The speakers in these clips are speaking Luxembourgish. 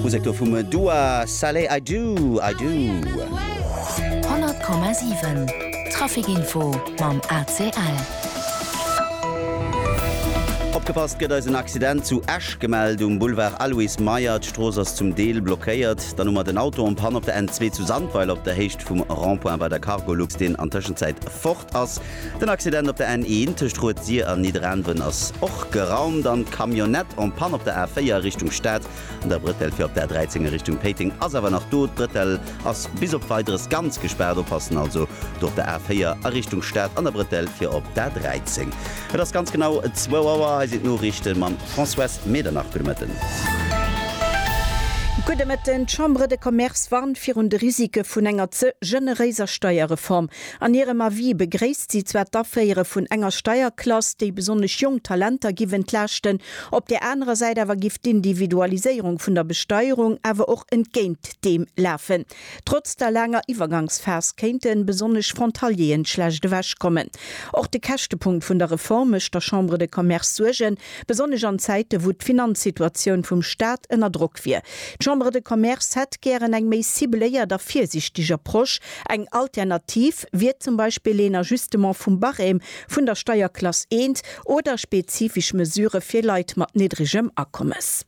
Musek do vum Dua Saleh I do, I do. 100,7 Traficinfo mam ACL. Opgepasst, gëtt eis en Accident zu Esch gemellt um Boulevard Aloyse Meyer. D'Strooss ass zum Deel blockéiert. Dann hu mer den Auto en panne op der N2 zu Sandweiler op der Héicht vum Rond-point bei der Cargolux, deen an Tëschenzäit fort ass. Den Accident op der N1 tëscht Rued-Sir an Nidderaanwen ass och geraumt an d'Camionnette en panne op der A4 a Richtung Stad an der Brëtell fir op der A13 a Richtung Péiteng ass awer nach do. D'Brëtell ass bis op Weideres ganz gespaart, oppassen also do op der A4 a Richtung Stad an der Brëtell fir op d'A13. Et ass ganz genau zwou Auer. Hei sinn d'Noriichte mam Françoise Medernach. Gudde Mëtten. Gudde Mëtten. D'Chambre de Commerce warnt virun de Risike vun enger ze generéiser Steierreform. An hirem Avis begréisst si zwar d'Aféiere vun enger Steierklass, déi besonnesch jonk Talenter giff entlaaschten, op där anerer Säit awer giff d'Individualiséierung vun der Besteierung awer och entgéint deem lafen. Trotz der laanger Iwwergangsphas kéinte besonnesch Frontalieren schlecht ewech kommen. Och de Käschtepunkt vun der Reform mécht der Chambre de Commerce Suergen, besonnesch an Zäite wou d'Finanzsituatioun vum Staat ënner Drock wier. D'Chambre de Commerce hätt gären eng méi cibléiert a virsichteg Approche, Eng Alternativ wier zum Beispill een Ajustement vum Barème vun der Steierklass I oder spezifesch Mesurë fir Leit mat niddregem Akommes.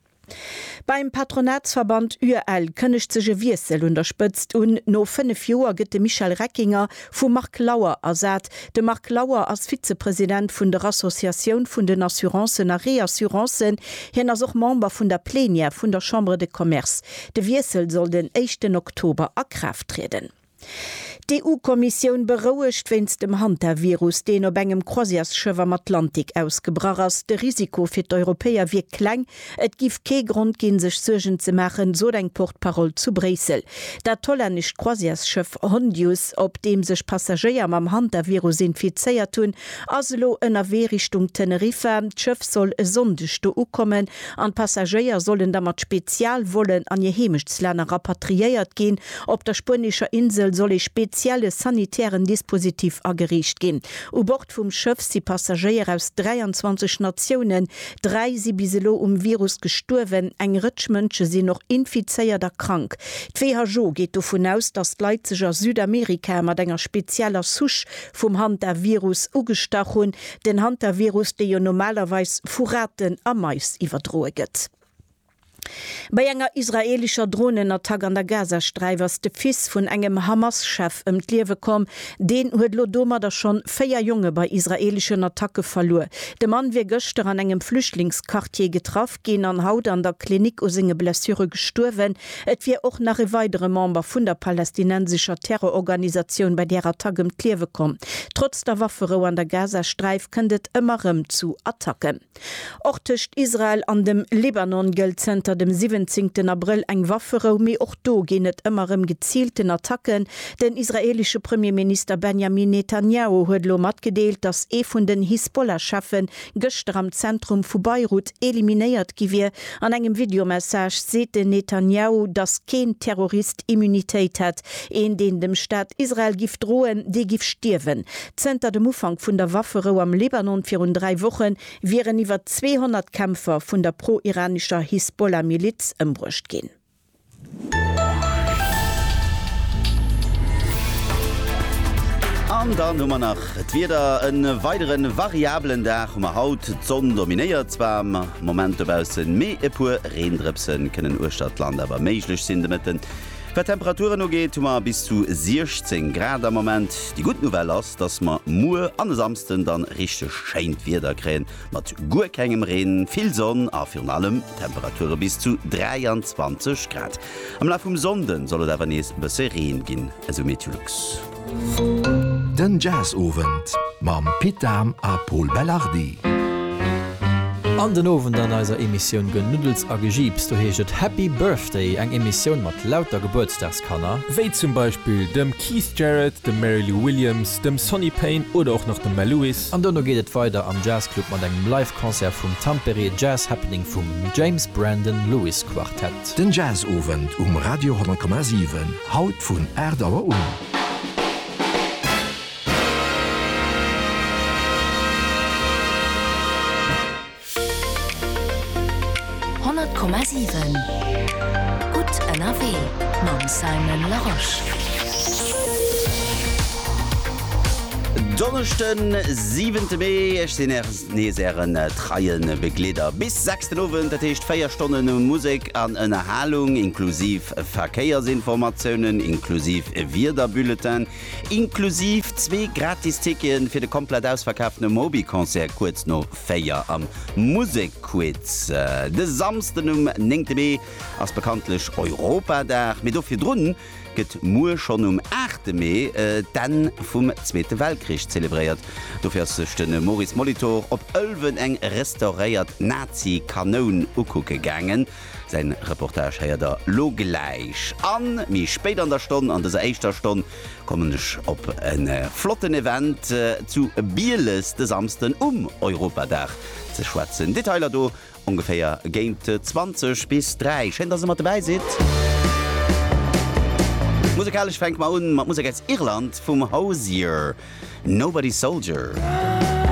Beim Patronatsverband UEL kënnegt sech e Wiessel un der Spëtzt un, No fënnef Joer gëtt de Michel Reckinger vum Marc Lauer ersat. De Marc Lauer ass Vizepresident vun der Associatioun vun den Assurancen a Reassurancen. Hien ass och Member vun der Plenière vun der Chambre de Commerce. De Wiessel soll den éischten Oktober a Kraaft trieden. D'EU-Kommissioun berouegt wéinst dem Hantavirus, deen op engem Croisièresschëff am Atlantik ausgebrach ass. De Risiko fir d'Europäer wier kleng. Et géif kee Grond ginn, sech Suergen ze maachen, sot eng Porte-parole zu Bréissel. Dat hollännescht Croisièresschëff Hondius, op deem sech Passagéier mam Hantavirus infizéiert hunn, ass elo ënnerwee Richtung Teneriffa. D'Schëff soll e Sonndeg do ukommen an d'Passagéier sollen da mat Spezialvollen an hir Heemechtslänner rapatriéiert ginn. Op der spuenescher Insel soll ee spezielle sanitären Dispositif ageriicht ginn. U Bord vum Schëff si Passagéier aus 23 Natiounen. Dräi si bis elo um Virus gestuerwen. Eng Rëtsch Mënsche sinn och infizéiert a krank. D'WHO geet dovun aus, datt d'Leit sech a Südamerika mat enger spezieller Souche vum Hantavirus ugestach hunn, den Hantavirus, dee jo normalerweis vu Raten a Mais iwwerdroe gëtt. Bei enger israeelescher Dronenattack an der Gazasträif ass de Fils vun engem Hamas-Chef ëm d'Liewe komm. Deen huet elo domadder schonn véier Jonge bei israeeleschen Attacke verluer. De Mann wier gëschter an engem Flüchtlingsquartier getraff ginn an haut an der Klinik u senge Blessure gestuerwen. Et wier och nach e weidere Member vun der palästinensescher Terrororganisatioun bei där Attack ëm d'Liewe komm. Trotz der Wafferou an der Gazasträif kënnt et ëmmer rëm zu Attacken. Och tëscht Israel an dem Libanon gëllt zënter dem siwwenzéngten Abrëll eng Wafferou, mee och do ginn et ëmmer rëm geziilten Attacken. Den israeelesche Premierminister Benjamin Netanjahu huet elo matgedeelt, datt ee vun den Hisbollah-Cheffen gëschter am Zentrum vu Beirut eliminéiert gi wier. An engem Videomessage seet den Netanjahu, datt keen Terrorist Immunitéit hätt. Een, deen dem Staat Israel giff droen, dee giff stierwen. Zënter dem Ufank vun der Wafferou am Libanon virun dräi Woche wieren iwwer 200 Kämpfer vun der pro-iranescher Hisbollah-Miliz ëmbruecht ginn. An dann hu mer nach d'Wieder, e weidere variabelen Dag hu mer haut. D'Sonn dominéiert zwar am Moment dobaussen, mee e puer Reendrëpse kënnen uechter d'Land awer méiglech sinn de Mëtten. Wat d'Temperaturen ugeet, hu mer bis zu 16 Grad am Moment. Déi gutt Nouvelle ass, dass mer muer an e Samsden dann richteg schéint Wieder kréien. Mat guer kengem Reen, vill Sonn a virun allem Temperature bis zu 23 Grad. Am Laf vum Sonnden soll et awer nees bësse Reen ginn, esou Meteolux. Den Jazzowend mam Pit Dahm a Pol Belardi. An den Owend an eiser Emissioun Genuddels a Gejiips, do heescht et Happy Birthday, eng Emissioun mat lauter Gebuertsdagskanner, wéi zum Beispill dem Keith Jarrett, dem Mary Lou Williams, dem Sonny Payne oder och nach dem Mel Lewis, An dono geet et weider am Jazzclub mat engem Live Concert vum Tampere Jazz Happening vum James Brandon Lewis Quartet. Den Jazzowend um Radio 10,7, haut vun 8 Auer un. 100,7 Gutt ënnerwee mam Simon Larosche. Donneschden, siwente Mee, ech sinn Är nees Ären treien Begleeder bis 6 den Owend, dat heescht 4 Stonnen Musek an Ënnerhalung, inklusiv Verkéiersinformatiounen, inklusiv e Wiederbulletin, inklusiv zwee gratis Ticketen fir de komplett ausverkaaften Moby Concert kuerz no 4 am Musekquiz. De Samsden um 9 Mee ass bekanntlech Europadag, mee do virdrun gëtt muer schonn um 8 Mee d'Enn vum Zweete Weltkrich zelebréiert. Dofir ass sech de Maurice Molitor op Ëlwen eng restauréiert Nazi-Kanoun ukucke gaangen. Säin Reportage héiert der lo gläich. An méi spéit an der Stonn, an dëser éischter Stonn, kommen ech op e flotten Event zu Bieles de Samsden um Europadag ze schwätzen. Detailer do ongeféier géint 20 bis 3. Schéin dass der mat dobäi sidd. Musekalesch fänke mer un mat Musek aus Irland vum Hozier, Nobody Soldier.